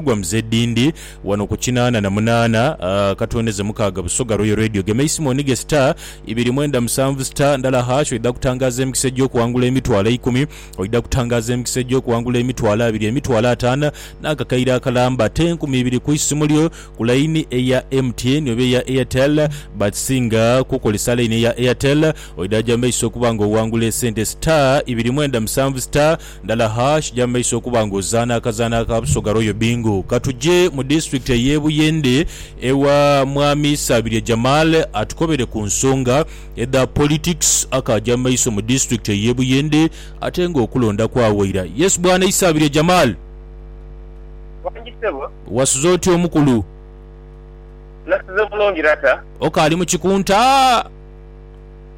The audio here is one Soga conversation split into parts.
gwa Mzee Dindi wano ku kinaana na munaana katwendeze mukaaga Busoga Royal Radio gema isimu onige star ibiri mwenda musanvu star ndala hash oidha kutangaaza emikisa egy'okuwangula emitwalo eikumi oidha kutangaaza emikisa egy'okuwangula emitwalo abiri emitwalo ataana n'akakaire akalamba ate enkumi ibiri ku isimu lyo ku layini eya MTN oba eya Airtel but singa kukolesa layini eya Airtel oidha gya maiso okuba nga owangula esente star ibiri mwenda musanvu star Ndala Hash ja mu maiso okuba nga ozaana akazaanho aka Busoga Royal Bingo. Ka tuje mu disitulikiti ey'e Buyende ewa Mwami Sabirye Jamal atukobere ku nsonga edha politics akaaja mu maiso mu disitulikiti ey'e Buyende ate nga okulonda kwawaira. Yes Bwana Isabirye Jamal. Wangi ssebo. Wasuze otya omukulu? Nasuze bulungi lata. Okaali mu kikunta?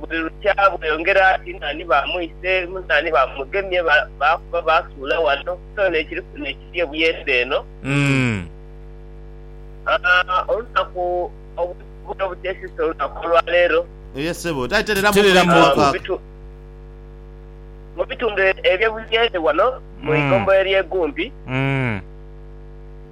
buli lukya bweyongera ati naani baamwise, naani baamugemye, baakuba baasuula wano, so n'ekiri kuno ekiri ebuyende eno. Olunaku obutuli obuteesisa olunaku olwa leero, mu bitundu eby'ebuyende wano mu ighombolola ly'e Gumbi,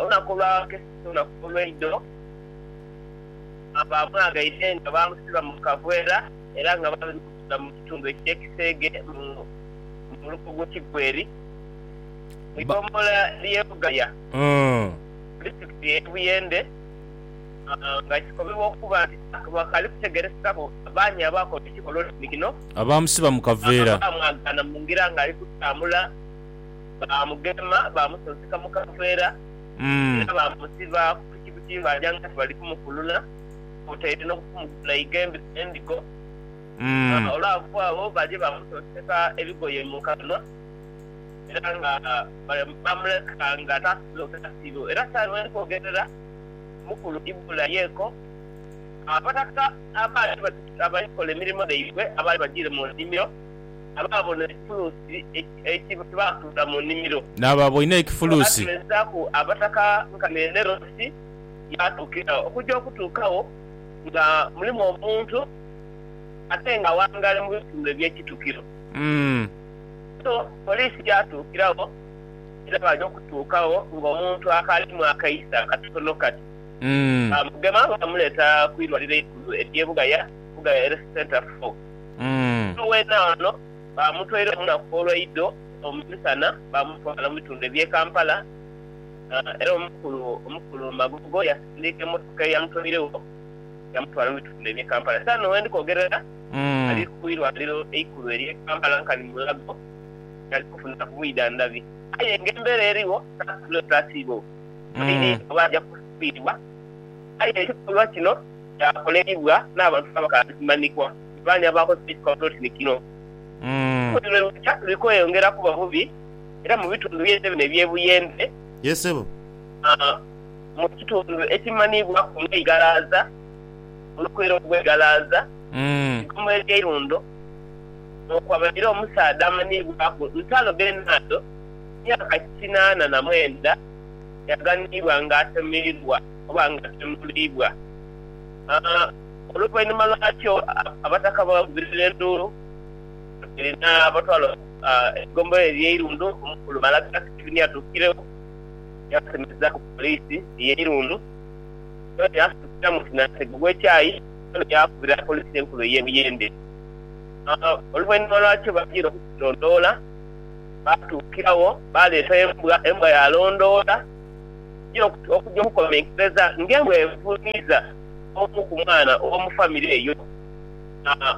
Olunaku olwa keeto olunaku olweidho baamwaghaire nga baamusiba mu kavwera era nga baabimusuula mu kitundu eky'e Kiseege mu luko gw'e Kigweri mu ighombolola ly'e Bugaya mu disitulikiti y'e Buyende nga kikomibwa okuba nti tiwakali kutegeerekekaku baani abaakola ekikolwa kino abaamwagaana mu ngira ng'ali kutambula. baamugema, baamusunsika mu kanveera, era baamusiba ku piki butimbaja nga tibali kumukulula kwotaire n'okumugula eighembe ly'endigo. Olwava agho baje baamusonseka ebigoye mu kanwa, era nga baamuleka nga taasobola okweta siiro. Era saagha gheni kwogerera, mukulu Ibula yeeko. Abataka abaali abaali kola emirimo dhaibwe abaali bajiire mu nnimiro. abaabona ekifuluusi eki baasuula mu nnimiro. N'abo abaina ekifuluusi. Yaabaleesaaku abataka nkani Enerosi yaatuukira okugya okutuukagho nga mulimu omuntu ate ng'awangaale mu bitundu eby'ekitukiro. Buto poliisi yaatuukiragho era baaja okutuukagho ng'omuntu akaalimu akaiso akatono kati. Baamugema baamuleeta ku irwaliro eikulu ery'e Bugaya, Bugaya Health Centre four. Omuntu weena ono baamutwaire mu lunaku olwaidho omu misana baamutwala mu bitundu eby'e Kampala era omukulu omukulu Magogo yasindiika emmotoka eyamutwairegho yamutwala mu bitundu eby'e Kampala. Esaagha dhino bwendi kwogerera ali ku irwaliro eikulu ery'e Kampala nkani Mulago ghali kufuna ku bwidhandhabi aye nga embeera erigho tasobola oti asiibwewo oba aja kufiirwa aye ekikolwa kino kyakoleibwa n'abantu abakaalimanhikwa. Baani abaakozesa ekikoba polotini kino? Olusozi lwe lukya luli kweyongera kuba bubi era mu bitundu by'ensi bino eby'e Buyende, mu kitundu ekimanhiibwaku nga Igalaza, olukwero lw'e Igalaza, Igoma ery'eirundo, mwekwabairewo omusaadha amanhiibwaku Ntalo Bernardo, myaka kinaana na mwenda, eyaghanhibwa ng'atemeibwa. okuba nga atemuliibwa. Oluvainhuma lwakyo abataka baavugira enduulu Abisiraeli n'abatwala eigombolola ery'eirundu. Omukulu Malakiya Sitefani yatuukiregho yaasemezaaku poliisi y'eirundu. Yoona yaasitukira mu sinagogi ogw'ekyayi, yoona yaakubira poliisi enkulu ey'e Buyende. Oluvainhuma lwakyo baajira okugilondoola, baatuukiragho baaleeta embwa, embwa yaalondoola. yo okuja okukomenkereza ng'embwa evuuniiza omu ku mwana ow'omu famire eyo.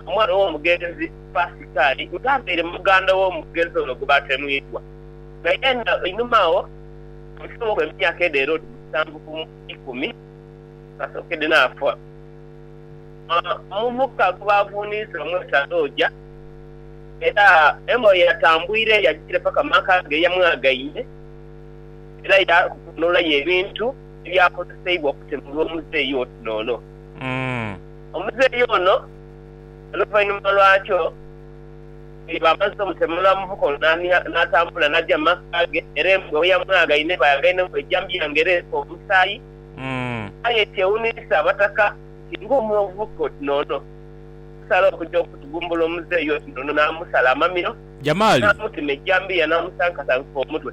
Omwana ow'omugenzi Pasikaali ng'abaire muganda w'omugenzi ono gwe baatemuidwa, nga yenha einhuma agho omusawo w'emyaka edha Herode musanvu ku ikumi kasookedde naafa. Omuvubuka gwe baavuuniiza amweta Roja, era embwa ye yatambwire yagiira paka mu maka ge yamwagaine. era yaanolayo ebintu ebyakozeseibwa okutemulwa omuzeeyi oti n'ono. Omuzeeyi ono oluvainhuma lwakyo bwe baamaze omutemula, omuvuka ono naatambula naaja mu maka ge era embwa bwe yamwaghaine baaghaine ng'oijambiya ng'ereese omusaayi. Aye kyewuniisa Abataka nti ng'omu omuvuka oti n'ono asala okuja okutugumbula omuzeeyi oti n'ono naamusala amamiro, naamutema eijambiya naamusankasanka omutwe.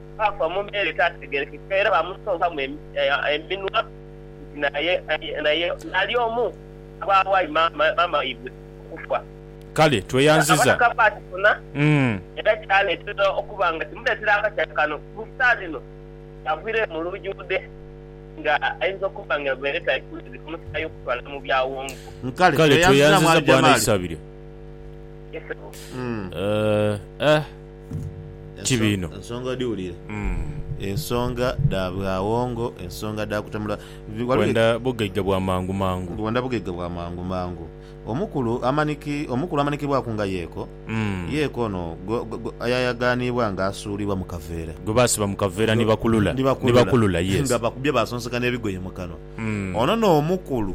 baafa mu mbeera etaategeerekeka era baamusonkamu eminwa nti naye naali omu ku baawayo maama waibwe okufa. Kale tweyanziza. Abataka baakifuna era kyaleetera okuba nga kimuleetera akatya kano ku saa dhino ky'avwireyo mu lujudhe nga aidha okuba nga ebeere etali kulungi kumusaayi okutwala mu byawongo. Kale tweyanziza Bwana Isabirye. Yee ssebo. Eeh. Ti biino. Ensonga odhiwulire. Ensonga dha bwawongo, ensonga dha kutemula. Gh, ghaligho Kwenda bugaiga bwa mangu mangu. Kwenda bugaiga bwa mangu mangu. Omukulu amanhiki, omukulu amanhikibwaku nga Yeeko. Yeeko ono gwe, gwe ayayagaanibwa nga asuulibwa mu kaveera. Gwe baasiba mu kaveera ni bakulula, Ni ni bakulula. bakulula, yes. Nga bakubye baasonseka n'ebigoye mu kanwa. Ono n'omukulu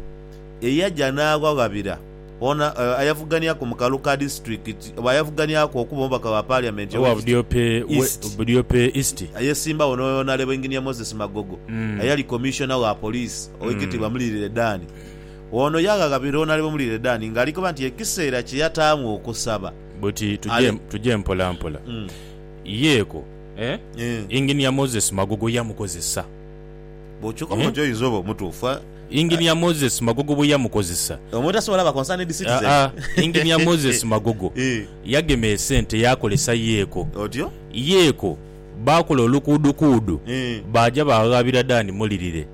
eyaja n'aghaghabira. Ono ayavuganiaku mu Kaluka disiturikiti oba ayavuganiaku okuba omubaka wa Paaliamenti owa Budiope East, Budiope East, ayesimbawo ni Onalebo Engineer Moses Magogo ayali Commissioner wa Police Owekitiibwa Mulirire Dan. Ono yaghaghabira Onalebo Mulirire Dan nga alikoba nti ekiseera kye yataamu okusaba Buti tuje tuje mpolampola. Yeeko, Engineer Moses Magogo yamukozesa. Bwokyuka bwotyo oyinza oba omutuufu. Engineer Moses Magogo bwe yamukozesa. Omuntu asobola laba concerned citizen. Aa, Engineer Moses Magogo yagema esente yaakolesa Yeko. Otyo? Yeko baakola olukuudukuudu baaja baaghabira Dan Mulirire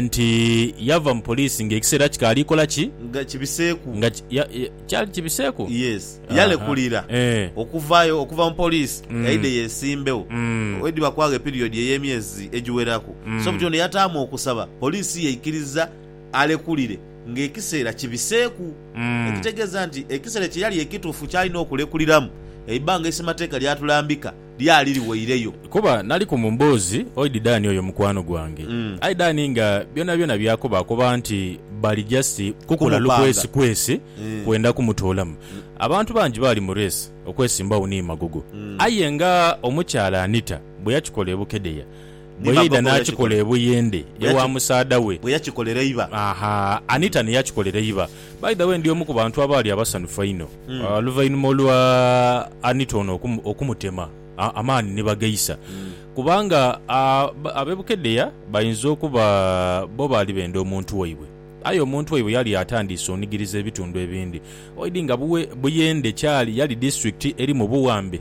nti yava mu poliisi ng'ekiseera kikaali kola ki? Nga kibiseeku. Nga ki, ya, ya. Kyali kibiseku? Yes. Aha. Yalekulira Eh. okuvayo okuva mu poliisi Mm. yaidhe yeesimbewo Mm. ediba kwagho epiriyodi ey'emyezi egiweraku. Mm. So buti ono yataamu okusaba poliisi yaikiriza alekulire ng'ekiseera kibiseeku. Mm. Ekitegeeza nti ekiseera kye yali ekituufu ky'alina okulekuliramu, eibbanga eisemateeka ly'atulambika. lyali liweireyo. Kuba naliku mu mboozi oidi Dani oyo mukwano gwange. Aye Dani nga byonabyona by'akoba akoba nti bali just kukola lukwesikwesi kwenda kumutoolamu. Abantu bangi baali mu race okwesimbagho ni Magogo. Aye nga omukyala Anita bwe yakikola e Bukedea, Bwe yaidha n'akikola e Buyindi ewa musaadha we. Bwe yakikolera eiba. Aha, Anita ni yakikolera eiba. By the way, ndi omu ku bantu abaali abasanhufu einho oluvainhuma olwa Anita ono okumutema amaani ni bagaisa. Kubanga ab'e Bukedea bainza okuba bo baali benda omuntu waibwe, aye omuntu waibwe yali yatandiise onigiriza ebitundu ebindi. Oidhi nga Buyende kyali yali disiturikiti eri mu buwambe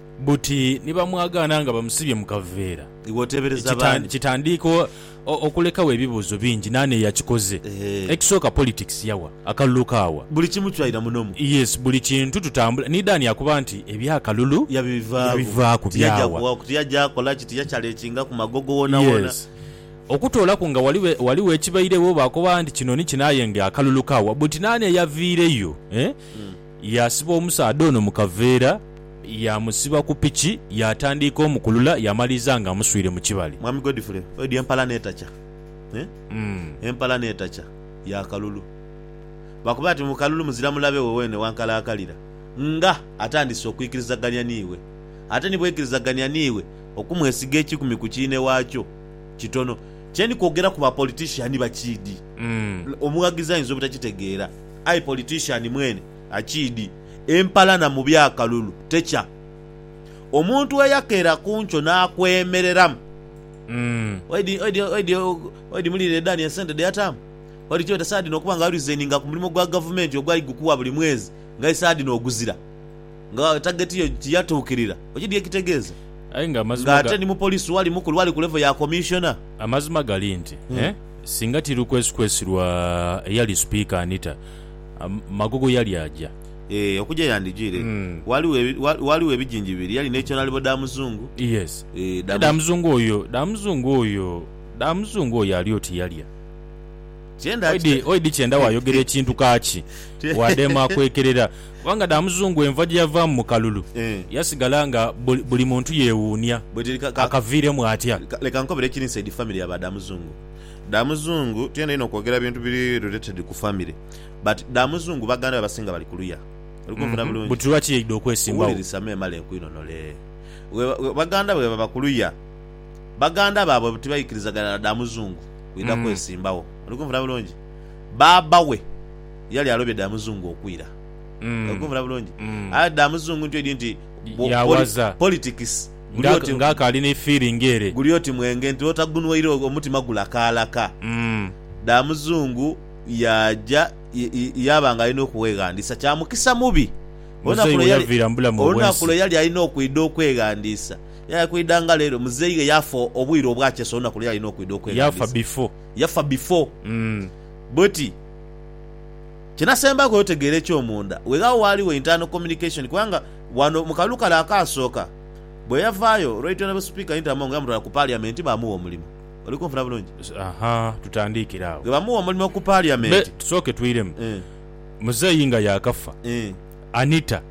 Buti ni bamwagaana nga bamusibye mu kaveera? Iwe oteebereza b'ani? Kitandiika okulekagho ebibuuzo bingi, naani eyakikoze? Ekisooka politics yawa? Akalulu kaawa? Buli kimu kyaira muno mu. Yes, buli kintu tutambula. Ni Dan yakoba nti, Eby'akalulu yabivaaku, byawa? Tiyajja kukola ki? Tiyakyalekingaku magogo woonawoona? Yes. Okutoolaku nga ghaligho ekibairegho, baakoba nti, Kino ni kino aye ng'akalulu kaawa? Buti naani eyaviireyo? Yaasiba omusaadha ono mu kaveera, yaamusiba ku piki, yaatandiika omukulula yaamaliriza ng'amuswire mu kibali. Mwami Godfrey oidhi empala n'etakya eh, empala n'etakya ya kalulu. Bakoba nti mu kalulu muzira mulabe we weene wankalaakalira nga atandise okwikirizagania n'iwe. Ate ni bweikirizagania n'iwe, okumwesiga ekikumi ku kiinhe waakyo kitono. Kye ndi kwogera ku ba politician bakiidhi, omughagizi ayinza obutakitegeera. Aye politician mwene akiidi empalana mu bya kalulu tekya omuntu eyakera kunkyo nakwemereramu oidi mulirire Dani esente dheyataamu oidi kyebeta saadhino okuba nga waresigninga ku mulimo gwa gavumenti ogwali gukuwa buli mwezi nga aye saadhino oguzira. Nga tageti yo tiyatuukirira, oidhi dhi ekitegeeza? Aye nga amazima ga. Ng'ate ni mupolisi wali mukulu ali ku levo ya komishona. Amazima gali nti, singa ti lukwesikwesi lwa eyali Sipiika Anita, Magogo yali aja. Ee, okuja yandijaire. Ghaligho, ghaligho ebijingi bibiri, yali ne Kyonalibo Damuzungu. Yes. Ee, Damuzungu. Damuzungu oyo, Damuzungu oyo, Damuzungu oyo ali oti yalya. Oidhi kyenda waayogera ekintu kaaki waadheema akwekerera. Kubanga dha Muzungu enva gye yavaamu mu kalulu yasigala nga buli muntu yeewuunia akaviiremu atya. Leka nkobere ekiri inside family ya ba dha Muzungu. Dha Muzungu tuyenda inho okwogera bintu biri related ku family but dha Muzungu baganda be abasinga bali kuluya. Oli kunfuna bulungi? Buti lwaki yaidha okwesimbawo? Wulirisa memale nkwinonole. Baganda be bwebaba kuluya. baganda baabwe bwe tibaikirizagana na dha Muzungu, kwidha kwesimbawo. Oli kunfuna bulungi? Baaba we yali alobye dha Muzungu okwira. Oli kunfuna bulungi? Aye dha Muzungu ntyo idi nti politics guli oti. Ng'akaali ni feeling ere. Guli oti mwenge nti bwotagunhwaire omutima gulakaalaka. Dha Muzungu yaaja yaaba ng'ali n'okweghandiisa. Kya mukisa mubi olunaku lwe yali alina okwidha okweghandiisa. Yakwidha nga lero. Muzei ghe yafa obwire obwakyesa olunaku lwe yalina okwidha okweghandiza. Yafa bifo. Bweti. Kye nasembaku otegeera ekyomunda, weghagho ghaligho internal communication kubanga ghano mu kalulu kale akaasooka bwe yavaayo, Right Honourable Speaker Inter Among yamutwala ku Parliament baamugha omulimo. Oli kunfuna bulungi? Aha, tutandiikire agho. Bwe baamugha omulimo ku Parliament. Tusooke twiremu. Muzei nga yaakafa, Anita.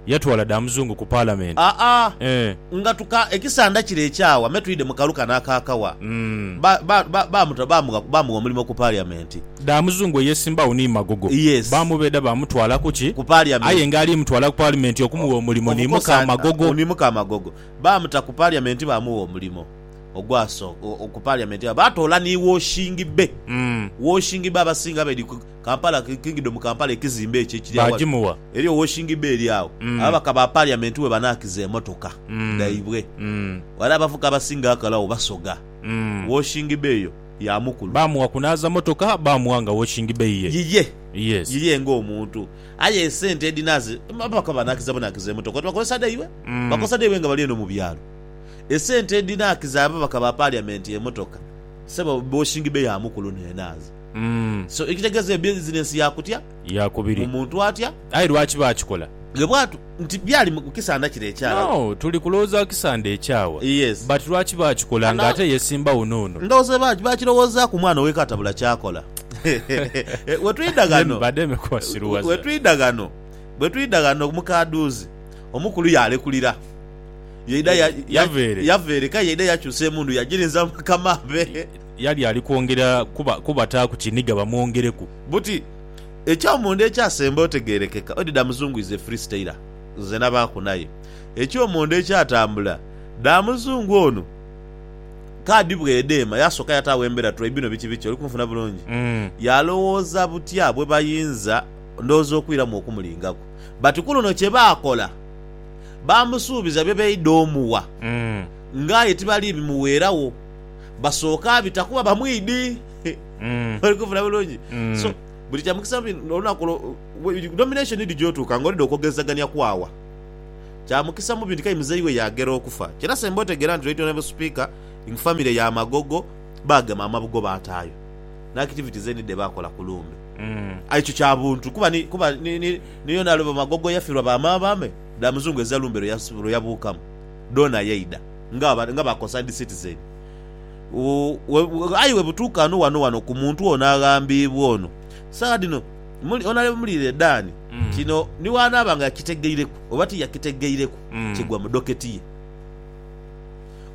yatwala dha muzungu ku Palamenti. Aa Eeh. nga tuka ekisanda kire ekyawa me twidhe mu kalu kano aka kawa. Umm. Ba, ba, ba, baamuta, baamugha, baamugha omulimo ku Paliamenti. Dha muzungu eyeesimbagho ni Magogo. Yes. Baamubeeda baamutwala ku ki? Ku Aye Paliamenti. nga ali mutwala ku Palimenti okumugha omulimo ni Omukozi muka a, Magogo. ni muka Magogo. Baamuta ku Paliamenti baamugha omulimo ogwaso, o, o, ku Paliamenti. Baatoola ni woshingi be. Umm. Woshingi be abasinga be di ku. Kampala, Kingdom Kampala ekizimbe ekyo ekiri aghali Baagimuwa. eri owoshingi beeri agho, Mm. ababaka ba Parliament we banaakiza emotoka Mm. dhaibwe. Mm. Ghale abavuka abasinga akalagho Basoga. Mm. Woshingi be eyo ya mukulu. Baamuwa kunaaza motoka, baamuwa nga woshingi be ye. Yiye, Yes. yiye nga omuntu. Aye esente edhinaaza, ababaka we banaakiza bunaakiza emotoka, oti bakozesa dhaibwe? Mm. Bakozesa dhaibwe nga bali eno mu byalo. Esente edhinaakiza ababaka ba Parliament emotoka, sebo, woshingi be ya mukulu n'enaaza. So ekitegeeza e bizinensi ya kutya? Ya kubiri. Mu muntu atya? Aye lwaki baakikola? Ghe bwatu nti byali mu kisanda kire ekyagho. No, tuli kulowooza kisanda ekyagho. Yes. But lwaki baakikola nga ate yesimba wuno wuno? Ndowooza bangi baakirowoozaaku mwana ow'eka atabula ky'akola. Bwe twidha ghano, bwe twidha ghano, bwe twidha ghano mu kadhuuzi, omukulu yaalekulira. Yaidha, yava ere. Yava ere, k'aye yaidha yakyusa emundu yagirinza mu makama abe. Yali ali kwongera kubataaku kiniga bamwongereku. Buti ekyomunda ekyasemba otegeerekeka oti Damuzungu is a free stayer. Nze nabaaku naye ekyomunda ekyatambula Damuzungu ono kaadi bwedheema yasooka yataagho embera try bino biki biki oli kunfuna bulungi? Yalowooza butya bwebayinza ndowooza okwiramu okumulingaku but kuluno kyebaakola baamusuubiza byebaidha omuwa nga aye tibali bimuweeragho. basooke abita kuba bamwidhi. Mm. Oli kunfuna bulungi? Mm. So, buli kya mukisa mu olunaku olwo, we- nomination idi gy'otuuka nga olidha okwogezagania kwaawa. Kya mukisa mubi nti k'aye muzei we yaagera okufa. Kyona semba otegeera nti Right Honourable Speaker, in family ya Magogo, baagema amabugho baataayo n'activities eni dhe baakola ku lumbe. Mm. Aye ekyo kya buntu kuba ni, kuba ni, ni, ni Honourable Magogo yafirwa ba maama be, dha muzungu eza lumbe lwe yas- lwe yabuukamu. dhoona yaidha nga ba concerned citizen aye bwebutuuka ghano ghano ghano ku muntu ono aghambiibwa ono, saagha dhino Honourable Muliire Dan kino ni bw'anaaba nga yakitegeireku oba tiyakitegeireku kigwa mu doketi ye.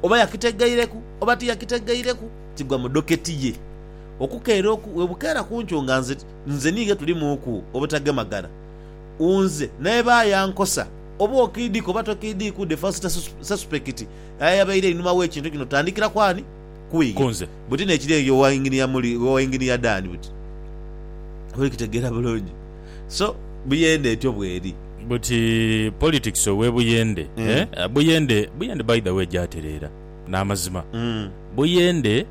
Oba yakitegeireku oba tiyakitegeireku kigwa mu doketi ye. Okukeera oku bwebukeera ku nkyo nga nze niighe tulimuuku obutagemagana, nze naye baayankosa. Oba okiidhiika oba tokiidhiika, udhe fa sita sesupekiti aye ayabaire einhuma w'ekintu kino. Tandhikira ku ani? Ku iye. Buti n'ekiri eyo owa Inginiya Muli, owa Inginiya Dan buti. Oba oli kitegeera bulungi? So, Buyende etyo bw'eri. Buti politics ow'e Buyende, eh? Buyende, Buyende by the way gyatereera, n'amazima. Buyende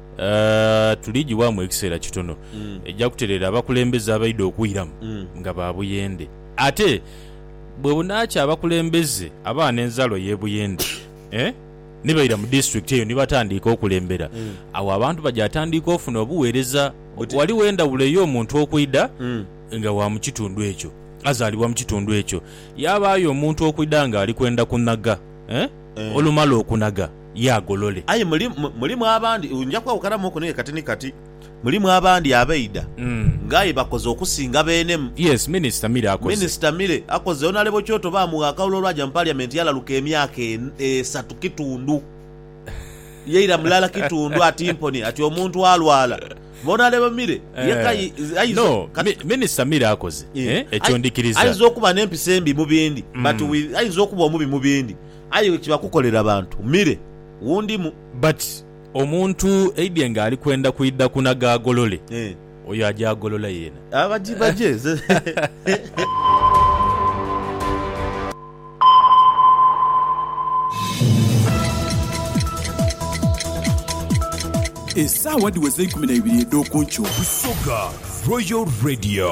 tuli giwaamu ekiseera kitono, eja kutereera abakulembeze abaidha okwiramu nga ba Buyende. Ate. bwe bunaakya abakulembeze abagha n'enzaalo y'e Buyende ni baidha mu disitulikiti eyo ni batandiika okulembera, agho abantu bajatandiika ofuna obugheereza. Ghaligho endhawulo ey'omuntu okwidha nga wa mu kitundu ekyo, azaalibwa mu kitundu ekyo, yaabaayo omuntu okwidha ng'ali kwenda kunhaga, olumala okunhaga yaagolole. Aye mulimu abandi, nja kwawukanamu oko n'aye kati ni kati. Mulimu abandi abaidha nga aye bakoze okusinga beenemu. Yes, Minisita Mire akoze. Minisita Mire akoze. Onalebo Kyoto baamugha akalulu olwaja mu Parliament yalaluka emyaka esatu kitundu. Yaira mulala kitundu ati mpone ati omuntu alwala. Onalebo Mire yeka aidha okuba. No, Minisita Mire akoze. Ekyo ndikiriza. Aidha okuba n'empisa embi mu bindi but with aidha okuba omubi mu bindi aye bwekiba kukolera bantu Mire wundimu. But Omuntu eidhie nga ali kwenda kwidha ku na gaagolole, oyo ajaagolola yeena. Abajibaje ze. Esaawa dhiweze eikumi na ibiri edh'okunkyo. Busoga Royal Radio.